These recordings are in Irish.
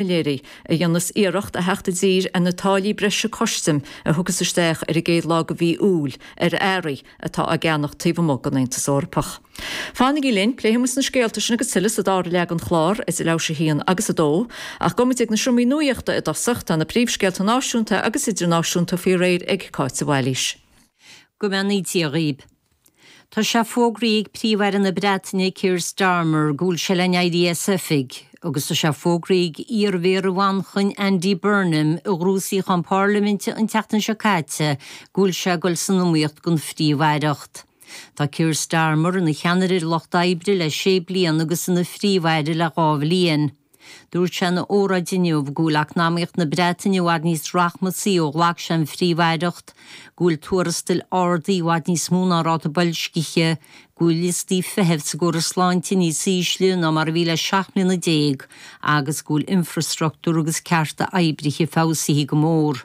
Calleary, a dhéanas iarracht a theacht i dtír ar na táillí breise custaim a thiocfas isteach ar an gcéad lá de mhí Iúil ar earraí atá á gceannach taobh amuigh den Aontas Eorpach. Fanaigí linn, pléifimid na scéalta sin agus tuilleadh sa dara leath den chlár, idir leathuair théis a haon agus a dó, ach gabhfaimid ag na seomraí nuaíochta i dtosach, tá na príomhscéalta náisiúnta agus idirnáisiúnta faoi réir ag Cáit de Bhailís. Go mbeannaítear dhaoibh! Tá sé fógraithe ag Príomh-Aire na Breataine Keir Starmer go bhfuil sé le n-éirí as oifig agus tá sé fógraithe ag iar-Mhéara Mhanchain Andy Burnham a ghnóthaigh suíochán pairliminte an tseachtain seo caite go bhfuil sé ag dul san iomaíocht don phríomh-aireacht. Tá Keir Starmer ina cheannaire ar Lucht Oibre le sé bliana agus ina Phríomh-Aire le dhá bhliain. Dúirt sé ina óráid inniu go bhfuil eacnamaíocht na Breataine i bhfad níos rachmasaí ó ghlac sé an Phríomh-Aireacht, go bhfuil tuarastail ardaithe i bhfad níos mó ná ráta boilscithe, go bhfuil liostaí feithimh sa gcóras sláinte níos ísle ná mar a bhí le seacht mbliana déag agus go bhfuil infreastruchtúr agus cearta oibrithe feabhsaithe go mór.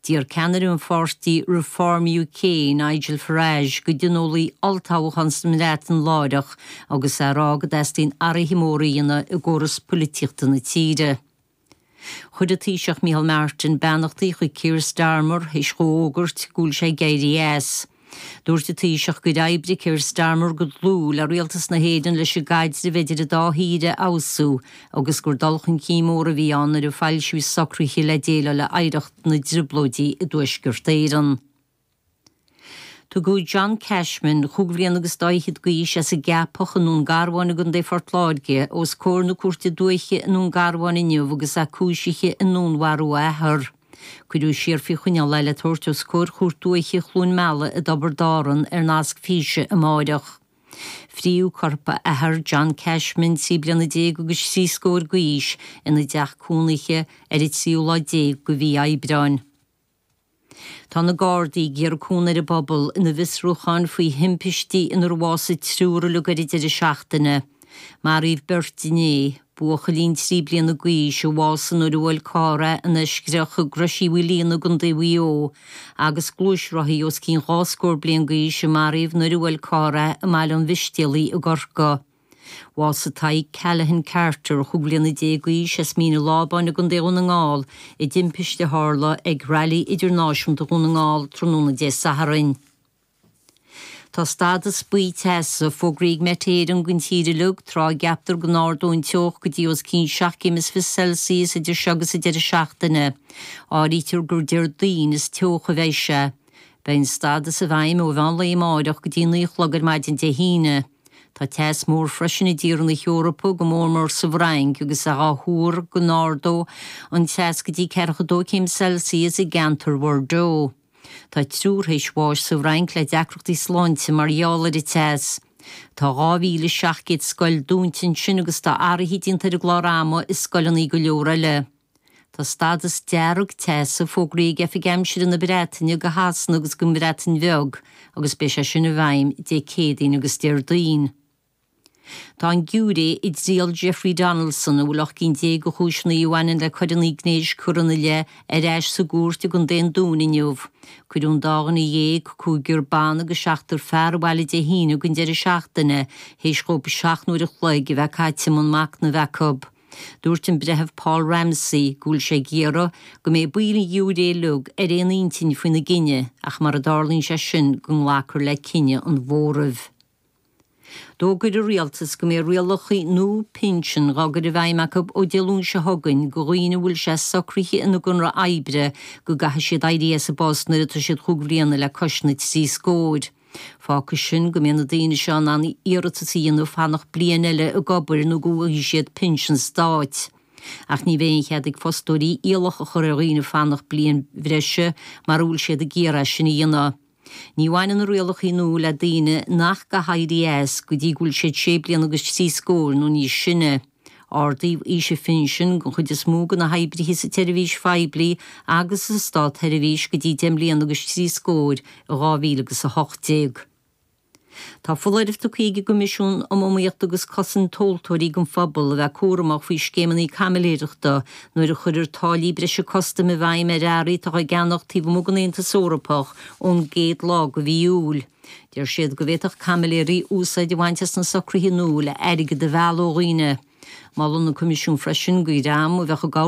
D'iarr ceannaire an pháirtí Reform UK, Nigel Farage, go dtionólfaí olltoghchán sa mBreatain láithreach, agus é ag rá go dteastaíonn athruithe móra a dhéanamh i gcóras poilitíochta na tíre. Chuir an Taoiseach Micheál Martin beannachtaí chuig Keir Starmer théis dhó a fhógairt go bhfuil sé ag éirí as. Dúirt an Taoiseach gur oibrigh Keir Starmer go dlúth le Rialtas na hÉireann leis an gcaidreamh idir an dá thír a fheabhsú agus gur dul chun cinn mór a bhí ann nuair a foilsíodh socruithe le déileáil le hoidhreacht na dTrioblóidí i dTuaisceart Éireann. Tugadh John Cashman, chúig bhliain agus dá fhichead d'aois, as an gCeapach i nDún Garbháin i gContae Phort Láirge, os comhair na Cúirte Dúiche i nDún Garbháin inniu agus é cúisithe i ndúnmharú a athar. Cuireadh siar faoi choinneáil é le tabhairt os comhair Chúirt Dúiche Chluain Meala i dTiobraid Árann ar nasc físe amáireach. Frítheadh corp a athar, John Cashman, trí bliana déag agus trí scóir d'aois, ina dteach cónaithe ar an tríú lá déag de mhí Aibreáin. Tá na Gardaí ag iarraidh cúnamh ar an bpobal ina bhfiosrúcháin faoi thimpistí inar bhásaigh triúr uilig ar an deireadh seachtaine. Maraíodh beirt inné. Buachaillín trí bliana d'aois a bhásaigh nuair a bhuail carr é in Eiscreach i gCrois Uí Mhaoilíona i gContae Mhaigh Eo, agus gluaisrothaí os cionn dhá scór bliain d'aois a maraíodh nuair a bhuail carr é i mBaile an Mhistéalaigh i gCorcaigh. Bhásaigh Tadhg Callaghan Carter, chúig bhliana déag d'aois, as Mín an Lábáin i gContae Dhún na nGall i dtimpiste a tharla ag Railí Idirnáisiúnta Dhún na nGall tráthnóna Dé Sathairn. Tá stádas buí teasa fógraithe ag Met Éireann don tír uilig tráth a gceaptar go n-ardóidh an teocht go dtí os cionn seacht gcéim is fiche Celsius idir seo agus an deireadh seachtaine. Áirítear gur Déardaoin is teocha a bheidh sé. Beidh an stádas i bhfeidhm ó mheán lae amáireach go dtí naoi a chlog ar maidin Dé hAoine. Tá teas mór freisin i dtíortha na hEorpa, go mór mór sa bhFrainc, agus é dhá thuar go n-ardóidh an teas go dtí ceathracha dó céim Celsius i gceantar Bhordeaux. Tá triúr théis bháis sa bhFrainc le deacrachtaí sláinte mar gheall ar an teas. Tá 2,700 scoil dúnta ansin agus tá athruithe déanta ar an gclár ama i scoileanna go leor eile. Tá stádas dearg teasa fógraithe ag Oifig Aimsire na Breataine go Shasana agus gon mBreatain Bheag agus beidh sé sin i bhfeidhm Dé Céadaoin agus Déardaoin. Tá an giúiré i dtriail Jeffrey Donaldson, a bhfuil ocht gcinn déag de chúiseanna a bhaineann le coireanna gnéis curtha ina leith, ar ais sa gcúirt i gContae an Dúin inniu. Cuireadh an dá dhuine dhéag, cúigear ban agus seachtar fear, abhaile Dé hAoine don deireadh seachtaine, théis dhóibh seacht n-uair an chloig a bheith caite i mbun machnaimh acu. Dúirt an Breitheamh Paul Ramsey go bhfuil sé ag iarraidh go mbeidh baill an ghiúiré uilig ar aon intinn faoina gcinneadh ach, mara dtarlaíonn sé sin, go nglacfar le cinneadh an mhóraimh. D'fhógair an Rialtas go mbeidh rialacha nua pinsin dhá gcur i bhfeidhm acu ó Dé Luain seo chugainn go dhaoine a bhfuil sé socraithe ina gconradh oibre go gcaithfidh siad éirí as a bpost nuair atá siad chúig bhliana le cois na trí scóir. Fágfaidh sin go mbeidh na daoine seo in ann iarratas a dhéanamh fanacht bliain eile ag obair nó go bhfaighidh siad pinsean stáit. Ach ní bheidh aon chead ag fostóirí iallach a chur ar dhaoine fanacht bliain bhreise mara bhfuil siad ag iarraidh é sin a dhéanamh. Ní bhaineann na rialacha nua le daoine nach gcaithfidh éirí as go dtí go bhfuil siad sé bliana agus trí scóir nó níos sine. Ardaíodh aois an phinsin don chuid is mó de na hoibrithe sa tseirbhís phoiblí agus sa státseirbhís go dtí deich mbliana agus trí scóir in 2018. Tá foláireamh tugtha ag an gCoimisiún um Iomaíocht agus Cosaint Tomhaltóirí don phobal a bheith cúramach faoi scéimeanna caimiléireachta nuair a chuirtear táillí breise custaim i bhfeidhm ar earraí atá á gceannach taobh amuigh den Aontas Eorpach ón gcéad lá de mhí Iúil. Deir siad go bhféadfadh caimiléirí úsáid a bhaint as na socruithe nua le airgead a mhealladh ó dhaoine. Molann an Coimisiún freisin go dhream a bheadh ag